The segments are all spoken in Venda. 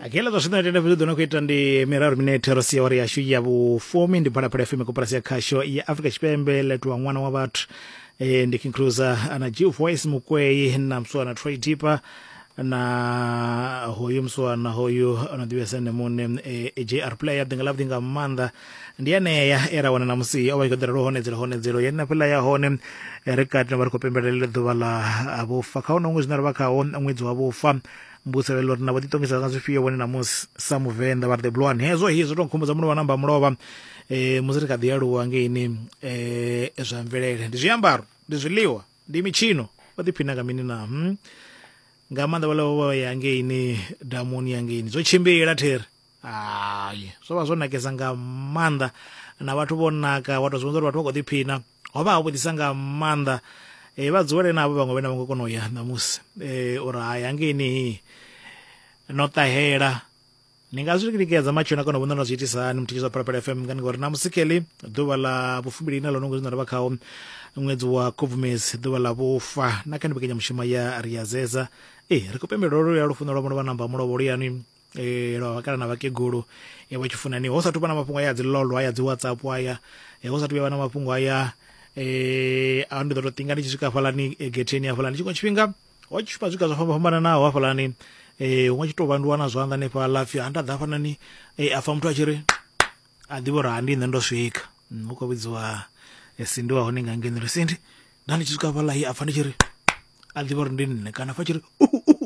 akela zwa zwino tenda vhudzi ḓo no khou ita ndi miraru minete ro sia wari yashu ya vhufumi ndi phalaphala fm koporasi ya khasho ya afrika tshipembe letowa ṅwana wa vhathu e, ndi king cruiser ana g voice mukweyi na mswana troy deeper na hoyu mswana hoyu ano ḓivhesa ene muṋe e, jr player ḓinga ḽavhuḓi nga maanḓa ndi anea e ra wana na musi o vha tshi khou ḓela lwo honedzela honedzelo ya na fhela ya hone ri kati na vha ri khou pembelela ḓuvha ḽa vhufa kha hone ṅwedzi na ri vha khaho ṅwedzi wa vhufa mbuselelo ri na vho ḓiṱongisa nga zwifhio vhone na musi sa muvenḓa vha ri the blwan hezwo hi zwo tou nkhumbudza mulovha namba mulovha um musi ri kha ḓi aluwa ngeini um zwa mvelele ndi zwiambaro ndi zwiḽiwa ndi mitshino vha ḓiphina nga mini na hmm? nga maanḓa vha ḽa vho ya ngeini damuni ya ngeini zwo tshimbila theri hai zwo vha zwo nakesa nga maanḓa na vhathu vho naka wa tou zwi vhonza uri vhathu vha khou ḓiphina ho vha ha vhuḓisa nga maanḓa um vha dzulele navho vhaṅwe vhene vha ngo kona u ya ṋamusi um uri hai hangeini no ṱahela ni nga zwi lingedza matshelo na kona u vhona na zwi itisa hani muthikiso wa phalaphala fm ngani ngori namusi keḽi ḓuvha ḽa vhufumbili ine ḽo no ngozwi na ri vha khawo ṅwedzi wa khubvumedzi ḓuvha ḽa vhufa na kha ni mbekanyamushumo ya ri ya zeza ee ri khou pembela lwo luya lufuno lwa mulovha namba mulovha luyanwi eh lwa vhakala na vhakegulu eh vha tshifunani ho sathu vha na mafhungo aya dzi lolo aya dzi WhatsApp aya eh ho sathu vha na mafhungo aya eh a ndi ḓo to tinga ndi tshi swika hafhalani eh, getheni hafhalani tshiṅwe tshifhinga ho tshi vha zwiga zwa fhamba fhambananaho hafhalani eh huṅwe tshi to vhanduwa na zwanḓa hanefha lafhi ha nda ḓa hafhanani eh afa muthu a tshi ri a ḓivha uri ha ndi nṋe ndo swika mm, hu khou vhidziwa eh, sindi wa hone nga ngeno ri sindi nda ndi tshi swika hafhala a pfa ndi tshi ri a ḓivha uri ndi nṋe kana fa tshi ri uhu uhu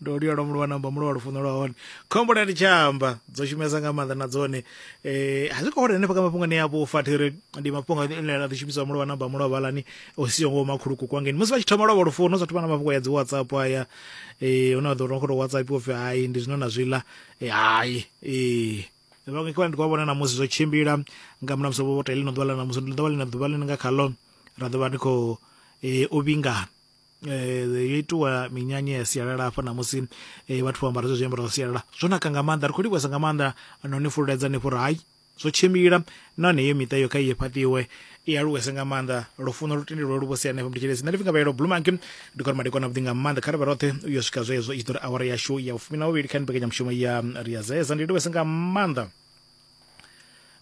ndo luyalwa mulwa namba mulwa wa lufuno lwa hone khombo na tshamba dzo shumesa nga maanḓa na dzone eh a zwi khou hone hanefha kha mafhungoni ya vhufa thiri ndi mafhungo ane a ḓi shumisa mulwa namba mulwa vhalani o siho ngo makhuluku kwa ngeni musi vha tshi thoma lwa lufuno zwa thoma na mafhungo ya dzi WhatsApp haya eh huna ḓo ro khou WhatsApp upfi hai ndi zwino na zwiḽa eh hai eh vhaṅwe kivha ndi khou vhona na musi zwo tshimbila nga muna musi vho tea ḽino ḓuvha ḽa na musi ndi ḓuvha ḽina ḓuvha ḽine nga khaḽo ra ḓo vha ndi khou eh, u vhingana eh, yo itiwa minyanya ya sialala hafha na musi eh, vhathu vho ambara zwe zwiambaro zwa sialala zwo naka nga maanḓa ri khou livhuwesa nga maanḓa no ni fululedza ni fhuri hai zwo tshimbila nahone iyo miṱa iyo kha iye fhaṱiwe i aluwese nga maanḓa lufuno lu tendelwe lu vho sia hanefho mditshelesi nṋe ndi pfinga vhayelo blue monkey ndi kone madekwana vhuḓi nga maanḓa kha ri vhe roṱhe u yo swika zwezwo i tshi ḓo ri awara yashu ya vhufumi na vhuvhili kha ni mbekanyamushumo ya ri ya zeza ndi livhese nga maanḓa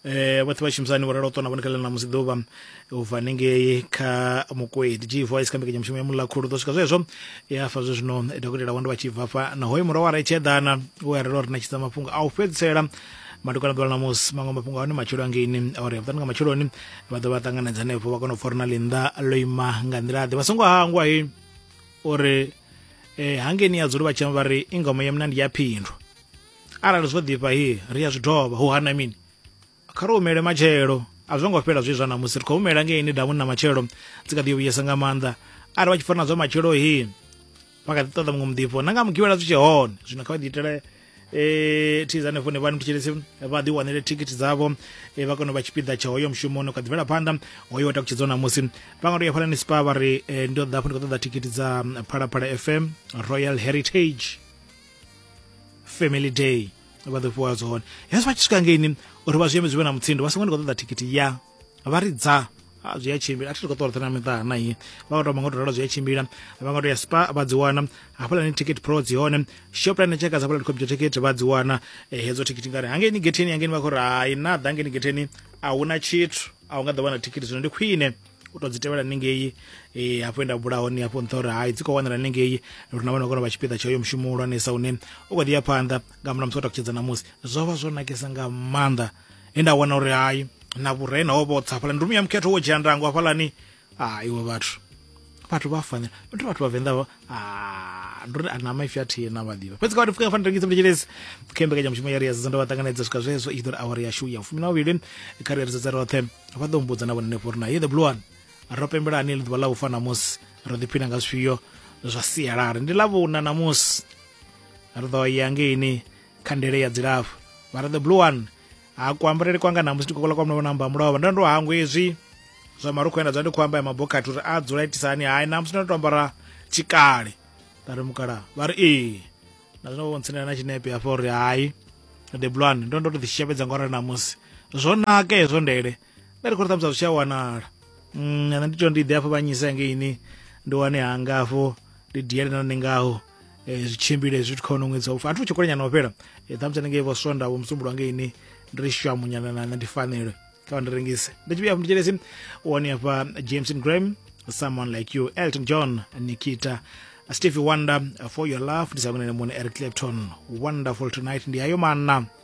eh vhoṱhe vha shumisani vho ralo tona vhone kha ḽeneḽa musi ḓuvha u bva hanengei kha mukwedi g voice kha mbekanyamushumo ya muḽa khulu ḓo swika zwezwo ya fa zwe zwino dokotela wando vha tshi bva fha na hoyo mura wa re tsheḓana we a rela uri na tshidza mafhungo a u fhedzisela madokwana ḓuvha ḽa musi maṅwe mafhungo a hone matshelo angeini ori ya vhuṱanu nga matsheloni vha ḓo vha ṱanganedza henefho vha kona u fora na ḽinḓa ḽo ima nga nḓila ḓe vha songo hangwa he uri um hangeni ya dzuli vha tshema vha ri ingoma ya mna ndi ya phindwa arali zwo ḓifha he ri ya zwi dovha hu hana mini kha ri humele matshelo a zwo ngo fhela zwi zwa ṋamusi ri khou humela ngeini damuni na matshelo dzi kha ḓi yo vhuyesa nga maanḓa arali vha tshi fora na zwa matshelo he vha kha ḓi ṱoḓa muṅwe muḓifho na nga mugivhela zwi tshe hone zwino kha vha ḓi itele eh thiza hanefho ne vhani mutshilisi vha ḓi wanele thikhithi dzavho eh, vha kone u vha tshipiḓa tsha hoyo mushumo no kha ḓi bvela phanḓa hoyo takutshedzwa ṋamusi vha nga to ya phalani spa vha ri eh, ndo ḓa hafho ndi khou ṱoḓa thikhithi dza mm, phalaphala fm royal heritage family day vha ḓo fhiwa dzone hezwi vha tshi swika ngeini uri vha zwi eme zwi vhe na mutsindo vha songo ndi khou ṱoḓa thikhithi ya vha ri dza a zwi a tshimbila a thi khou ṱola na miṱa na iyi vha nga tou vha nga tou ralo zwi a tshimbila vha nga tou ya spa vha dzi wana hafhaḽani ticket pro dzi hone shoplane tsheka dza vhalani computer ticket vha dzi wana eh, hedzo ticket ngari hangeni getheni hangeni vha khou ri hai na ḓa hangeni getheni a hu na tshithu a hu nga ḓo wana ticket zwino ndi khwine u tou dzi tevhela ningei um eh, hafho nda bula hone hafho nṱha uri hai dzi khou wanala ningei ri na vhana kona vha tshipiḓa tsha uyo mushumo hulwanesa une u kho ḓi ya phanḓa nga murahu musi wa takutshedza ṋamusi zwo vha zwo nakesa nga maanḓa he nda wana uri hayi na vhurena ho vhotsa hafhaḽani ndumi ya mukhetho wo dzhia ndango hafhaḽani a iwe vhathu vhathu vha fanela ndi vhathu vhavenḓa vha ah, ndi uri a na maipfi a thihi na vhaḓivha fhedzi kha vhathu fika fanela rengisa mletshelezi kha mbekanyamushumo ya ri ya zizonda vha ṱanganedza swika zwezwo i tshi ḓo ri awara yashu ya fumi na vhavhili kha ri ya ri sedza roṱhe vha ḓo mbudza na vhone henefho uri na ye the blue one ro pembelani ḽi ḓuvha ḽa ufa ṋamusi ro ḓiphina nga zwifhio zwa sialala ndi ḽa vhuna ṋamusi ri ḓo ya ngeini khandele ya dzilafho mara the blue one ha kuambarele kwanga namusi ndi kokola kwa mlomo na amba mulovha ndo ndo hangwe hezwi zwa marukhu enda zwa ndi khou amba ya mabokhathi uri a dzula itisa hani hai namusi ndo to ambara tshikale nda ri mukala vha ri ee na zwino vhontsinela na tshinepe hafha uri hai the blue one ndo ndo to ḓishishapedza ngorali namusi zwo naka hezwo ndele nda ri khou ri ṱhamusi a zwi tsha wanala mm, nṋe ndi to ndi ḓe afho vhanyisa ngeini ndi wane hanga afho ndi diele na ningaho eh, zwi tshimbile zwi kha ono ṅwedzi wa ufa a thi tshi kolenyana o fhela eh, ṱhamusi ndi ngei vho swonda vho musumbulwa ngeini ndi ri shwamunyana na ndi fanelwe kha vha ndi rengise ndi tshi vhuya afho ndi tshelesi u wane afha jameson graham someone like you elton john nikita stevie wonder for your love ndi sa kunene muone eric clapton wonderful tonight ndi ayo mana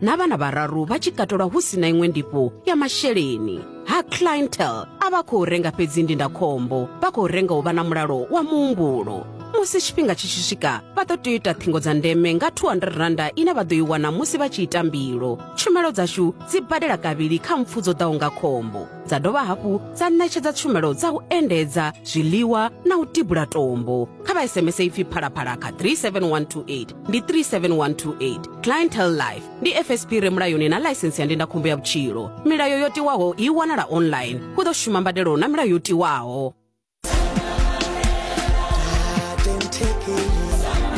na vhana vhararu vha tshi katelwa hu si na iṅwe ndifho ya masheleni ha clientel a vha khou renga fhedzi ndindakhombo vha khou renga u vha na mulalo wa muhumbulo musi tshifhinga tshi tshi swika vha ḓo tea u ita ṱhingo dza ndeme nga 200 randa ine vha ḓo i wana musi vha tshi ita mbilo tshumelo dzashu dzi badela kavhili kha mpfu dzo ḓaho nga khombo dza dovha hafhu dza ṋetshedza tshumelo dza u endedza zwiḽiwa na u tibula tombo kha vha sms ipfi phalaphala kha 37128 ndi 37128 clientel life ndi fsp re mulayoni na ḽaisensi ya ndindakhombo ya vhutshilo milayo yo tiwaho i wanala online hu ḓo shuma mbadelo na milayo yo tiwaho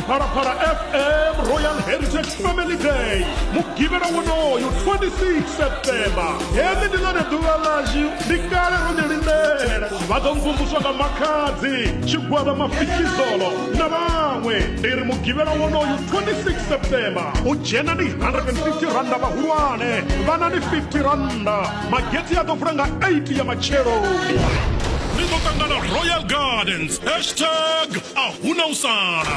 phalaphala fm royal heritage family day mugivhela wonoyo 26 septemba heḽi ndi ḽone ḓuvha ḽashu ndi kale ro ḓi lindela vha ḓo mvumvuswa nga makhadzi tshigwada mafikizolo na vhaṅwe ndi ri mugivhela wonoyu 26 september u dzhena ni 150 randa vhahulwane vhana ni 50 randa mageti a ḓo vula nga 8 ya matshelo ni ḓo ṱangana royal gardens hashtag a huna u sala